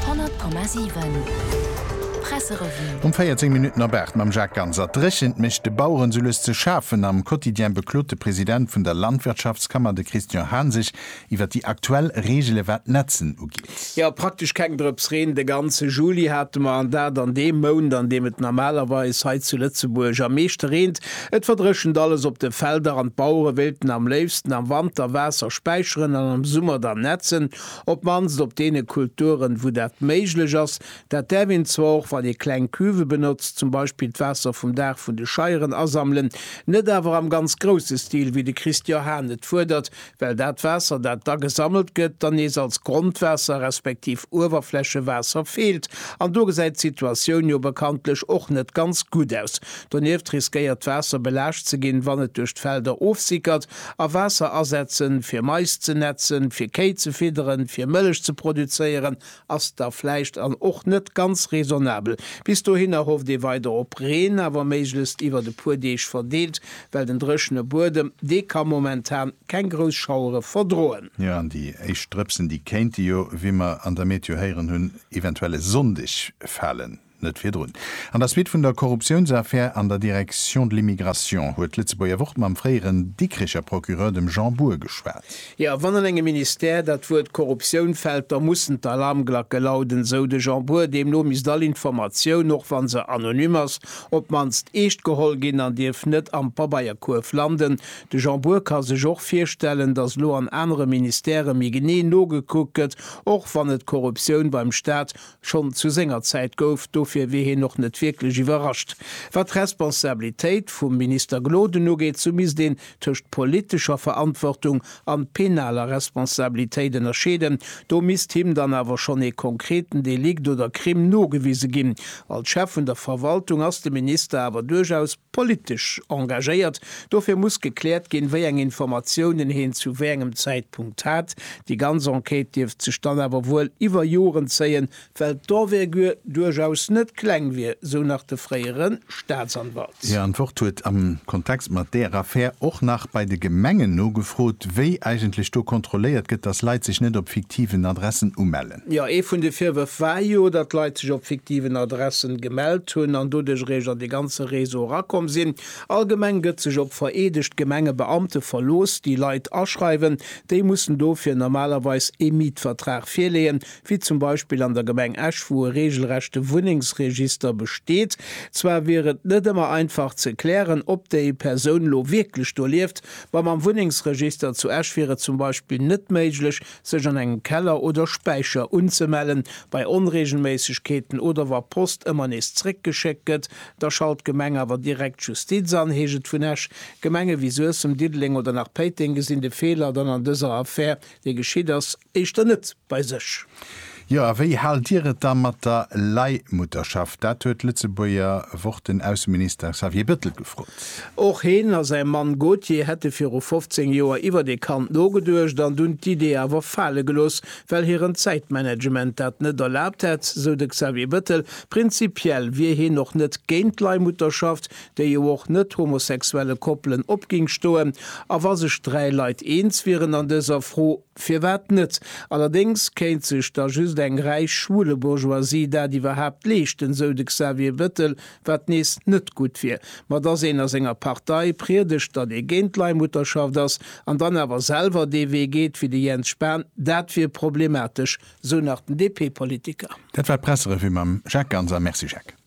100,7 Presserevue. Um 14 Minutten op 8 mam Jacques Ganser. D'Dréchent mécht de Baueren souloues ze schafen. Am Quotidien beklot de President vun der Landwirtschaftskammer, de Christian Hahn, sech iwwer déi aktuell Reegele wat d'Netzen ugeet. Jo, praktesch keng Drëps Reen de ganze Juli hate mer, an dat an deem Mount, an deem et normalerweis hei zu Lëtzebuerg am meeschte reent. Et verdréchent alles op de Felder an d'Bauere wéilten am léifsten am Wanter Waasser späicheren an am Summer dann netzen. Op d'mannst op deene Kulturen, wou dat méiglech ass. Dat däerf een zwar och, wann ee kleng Cuve benotzt, zum Beispill d'Waasser vum Daach vun de Scheieren asammelen, net awer am ganz grousse Stil, wéi de Christian Hahn et fuerdert, well dat Waasser, dat da gesammelt gëtt, dann nees als Grondwaasser respektiv Uewerflächewaasser feelt. An do gesäit d'Situatioun jo bekanntlech och net ganz gutt aus. Donieft riskéiert d'Waasser belaascht ze ginn, wann et duerch d'Felder ofsickert. A Waasser asetzen, fir Mais ze nätzen, fir Kéi ze fidderen, fir Mëllech ze produzéieren, ass da vläicht an och net ganz raisonnabel. Bis dohinner hofft ee weider op Reen, awer méiglechst iwwert e puer Deeg verdeelt, well den dréchene Buedem, dee ka momentan keng grouss Schauere verdroen. Jo, an déi éischt Drëpsen, déi kéinte jo, wéi mer an der Meteo héieren hunn, eventuell e Sonndeg falen. Net virdrun. An der Suite vun der Korruptiounsaffär an der Direction de l'immigration huet d'Lëtzebuerger Wort mam fréieren Dikricher Procureur, dem Jean Bour, geschwat. Jo, wann an engem Ministère dat Wuert Korruptioun fält, da mussen d'Alarmglacke lauden, esou de Jean Bour. Deemno misst all Informatioun, och wa se anonym ass, op d'mannst eescht geholl ginn an dierf net am Pabeierkuerf landen. De Jean Bour ka sech och virstellen, datt elo an anere Ministèrë méi genee nogekuckt gëtt, och wann et d'Korruptioun beim Staat Schonn zu senger Zäit gouf, dofir wier hien och net wierklech iwwerrascht. Wat d'Responsabilitéit vum Minister Gloden ugeet, sou misst een tëscht politescher Verantwortung an penaler Responsabilitéit ënnerscheeden. Do misst him dann awer schonn ee konkreten Delikt oder Crime nogewise ginn. Als Chef vun der Verwaltung ass de Minister awer duerchaus. Politesch engagéiert. Dofir muss gekläert ginn, wéi eng Informatiounen heen zu wéi engem Zäitpunkt hat. Déi ganz Enquête dierft sech dann awer wuel iwwer Joren zéien, well d'Envergure duerchaus net kleng wier, sou nach de fréiere Staatsanwalt. Hir Antwort huet am Kontext mat deer Affär och nach bei de Gemengen nogefrot, wéi eigentlech do kontrolléiert gëtt, datt Leit sech net op fiktiven Adressen umellen. Jo, ee vun de Virwërf war jo, datt Leit sech op fiktiven Adressen gemellt hunn an doduerch eréischt an dee ganze Réseau erakomm sinn. Allgemeng gëtt sech op vereedegt Gemengebeamte verlooss, déi Leit aschreiwen. Déi mussen dofir normalerweis ee Mietvertrag virleeën, wéi zum Beispill an der Gemeng Esch, wou e reegelrechte Wunnengsregister besteet. Zwar wier et net ëmmer einfach ze klären, ob déi Persoun elo wierklech do lieft, ma mam Wunnengsregister zu Esch wier et zum Beispill net méiglech, sech an engem Keller oder Späicher unzemellen, bei Onreegelméissegkeeten oder wa Post ëmmer nees zréckgeschéckt gëtt, da schalt d'Gemeng awer direkt d'Justiz an. Heescht et vun Esch, Gemenge wéi Suessem, Diddeleng oder nach Péiteng gesinn de Feeler dann an dëser Affär, déi geschitt ass, éischter net bei sech. Jo, a wéi haalt Dir et da mat der Leihmutterschaft? Dat huet d'Lëtzebuerger Wort den Ausseminister Xavier Bettel gefrot. Och heen a säi Mann Gauthier hätte viru 15 Joer iwwert ee Kand nogeduecht an dunn d'Idee awer fale gelooss, well hiren Zäitmanagement dat net erlaabt hätt, sou de Xavier Bettel. Prinzipiell wier heen och net géint d'Leihmutterschaft, déi jo och net-homosexuelle Koppelen opging stoen. A wa sech dräi Leit eens wieren an dëser Fro, Firwat net? Allerdéngs kéint sech da just eng räich schwule Bourgeoisie dat iwwerhaapt leeschten, sou de Xavier Bettel, wat nees net gutt wier. Ma dass een a senger Partei priedegt, datt ee géint d'Leihmutterschaft ass, an dann awer selwer dee Wee geet wéi de Jens Spahn, dat wier problematesch, sou nach den DP-Politiker. Dat war d'Presserevue mam Jacques Ganser. Merci Jacques.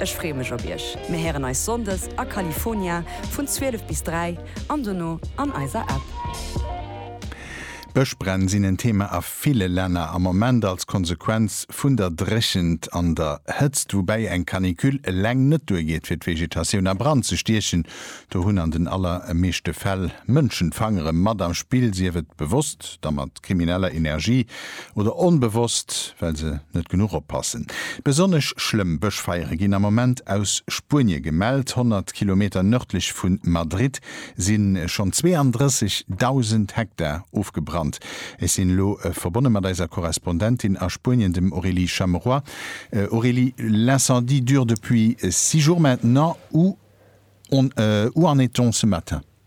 Ech freeë mech op iech. Mir héieren eis Sonndes a California vun 12 bis 3 an dono an eiser App. Bëschbränn sinn en Thema a ville Länner am Moment als Konsequenz vun der Dréchent an der Hëtzt, woubäi eng Canicule eleng net duergeet fir d'Vegetatioun a Brand ze stiechen. Do hunn an den allermeeschte Fäll Mënschen d'Fangere mat am Spill, sief et bewosst, da mat. krimineller Energie oder onbewosst, well se net genuch oppassen. Besonnesch schlëmm Bëschfeiere ginn am Moment aus Spuenie gemellt. Honnert Kilometer nërdlech vu Madrid si schonn 32.000 Hektar ofgebrannt. Ech sinn elo verbonne mat eiser Korrespondentin a Spuenien, dem Aurélie Chamerois. Aurélie, l'incendie dure depuis six jours maintenant, où en est-on ce matin?